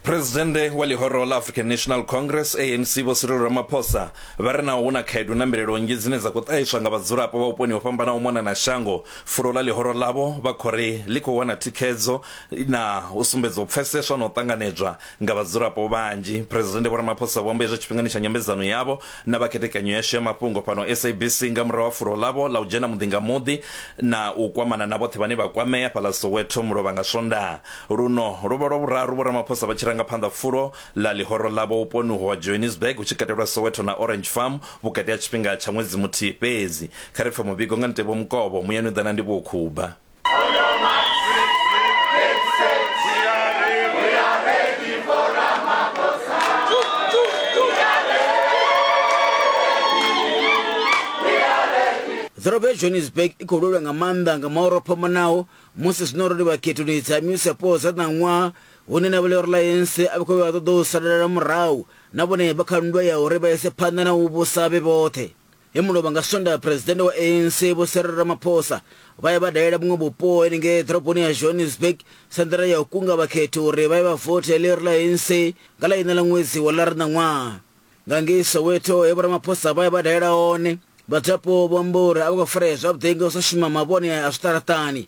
Presidennde wa ḽihoro ḽa African National Congress ANC Vho Cyril Ramaphosa vha ri naho hu na khaedu na mbilelo nnzhi dzine dza khou ṱahiswa nga vhadzulapo vha vhuponi ho fhambanaho mona na shango, fulo ḽa ḽihoro ḽavho vha khou ri ḽi khou wana thikhedzo na u sumbedza u pfeseswa na u ṱanganedzwa nga vhadzulapo vhanzhi. Presidennde Vho Ramaphosa vho amba hezwo tshifhingani tsha nyambedzano yavho na vha khethekanyo yashu ya mafhungo fhano SABC nga murahu ha fulo ḽavho ḽa u dzhena muḓi nga muḓi na u kwamana na vhoṱhe vhane vha kwamea fhaḽa Soweto mulovha nga Swondaha luno lwo vha lwa vhuraru Vho Ramaphosa vha tshi ranga phanḓa fulo ḽa ḽihoro ḽavho vhuponi uho ha Johannesburg hu tshi katelwa Soweto na Orange Farm vhukati ha tshifhinga tsha ṅwedzi muthihi fhedzi. Kha ri pfe muvhigo nga Nteboho Mukovho, muyani u ḓa na Ndivhuwo Khuba. ḓorobo ya johannesburg i khou lwelwa nga maanḓa nga maoro phomanaho musi zwino ro livha khethoni dza musapo dza ṋaṅwaha hune na vhele reliance a vha khou vha ṱoḓa u salela murahu na vhone vha kha nndwa ya uri vha ise phanḓa na u vhusa vhe vhoṱhe He muno vha nga Sondaha Phresidennde wa ANC Vho Cyril Ramaphosa vha ya vha dalela vhuṅwe vhupo henengei ḓoroboni ya Johannesburg sa nḓila ya u kunga vhakhethi uri vha ye vha vothe ḽiri ḽa ANC nga ḽa iṋa ḽa ṅwedzi wa ḽara ṋaṅwaha. Nga ngei Soweto he Vho Ramaphosa vha ya vha dalela hone, vhadzulapo vho amba uri a vho ngo farea zwavhuḓi nga u sa shuma mavhone a zwiṱaraṱani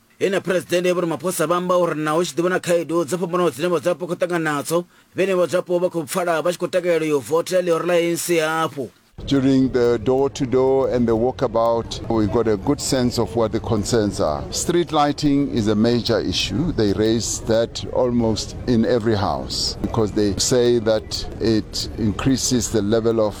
Ene Phresidennde Vho Ramaphosa vha amba uri naho hu tshi ḓi vha na khaedu dzo fhambanaho dzine vhadzulapo khou ṱangana nadzo, vhenevho vhadzulapo vha khou pfala vha tshi khou takalela u yo votela ḽihoro ḽa ANC hafhu. During the door to door and the walkabout, we got a good sense of what the concerns are. Street lighting is a major issue. They raise that almost in every house because they say that it increases the level of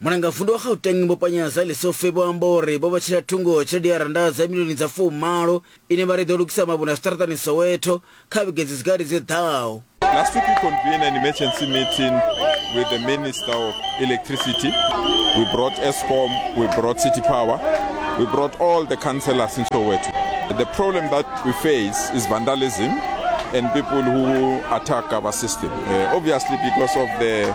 Mulangavundu wa Gauteng Vho Panyaza Lesufi vho amba uri vho vhetshela thungo tshelede ya rannda dza milioni dza fumalo ine vha ri i ḓo lugisa mavhone a zwiṱaraṱani Soweto kha vhege dzi si gathi dzi ḓaho. Last week we convened an emergency meeting with the Minister of Electricity. We brought Eskom, we brought City Power, we brought all the councillors in Soweto. The problem that we face is vandalism and people who attack our system. Uh, obviously because of the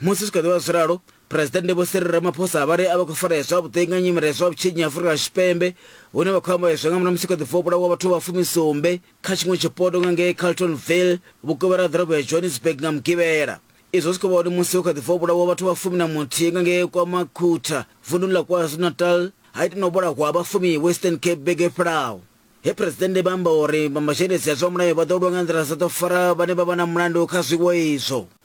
Musi zwi kha ḓi vha zwi ralo, Phresidennde Vho Cyril Ramaphosa vha ri a vha khou farea zwavhuḓi nga nyimele ya zwa vhutshinyi Afurika Tshipembe hune vha khou amba izwi nga murahu ha musi hu kha ḓi bva u vhulawa vhathu vha fumi sumbe kha tshiṅwe tshipoto nga ngei Carltonville vhukovhela ha ḓorobo ya Johannesburg nga Mugivhela. Izwo zwi khou vha hone musi hu kha ḓi bva u vhulawa vhathu vha fumi na muthihi nga ngei KwaMakhutha vunḓuni ḽa KwaZulu-Natal ha ita na u vhulahwa ha vha fumi Western Cape vhege i fhelaho he Phresidennde vha amba uri vha mazhendedzi a zwa mulayo vha ḓo lwa nga nḓila dzoṱhe u fara vhane vha vha na mulandu kha zwiwo izwo.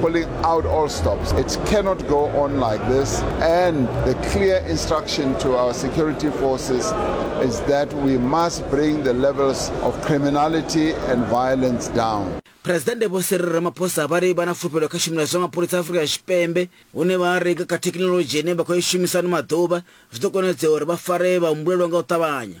pulling out all stops. It cannot go on like this. And the clear instruction to our security forces is that we must bring the levels of criminality and violence down. presidennde vho siri ramaphosa vha ri vha na fulufhelo kha tshumelo zwa mapholisa a afurika tshipembe hune vha ri kha thekhinoḽodzhi ine vha khou i shumisa ano maḓuvha zwi ḓo konadzea uri vha fare vha humbulelwa nga u ṱavhanya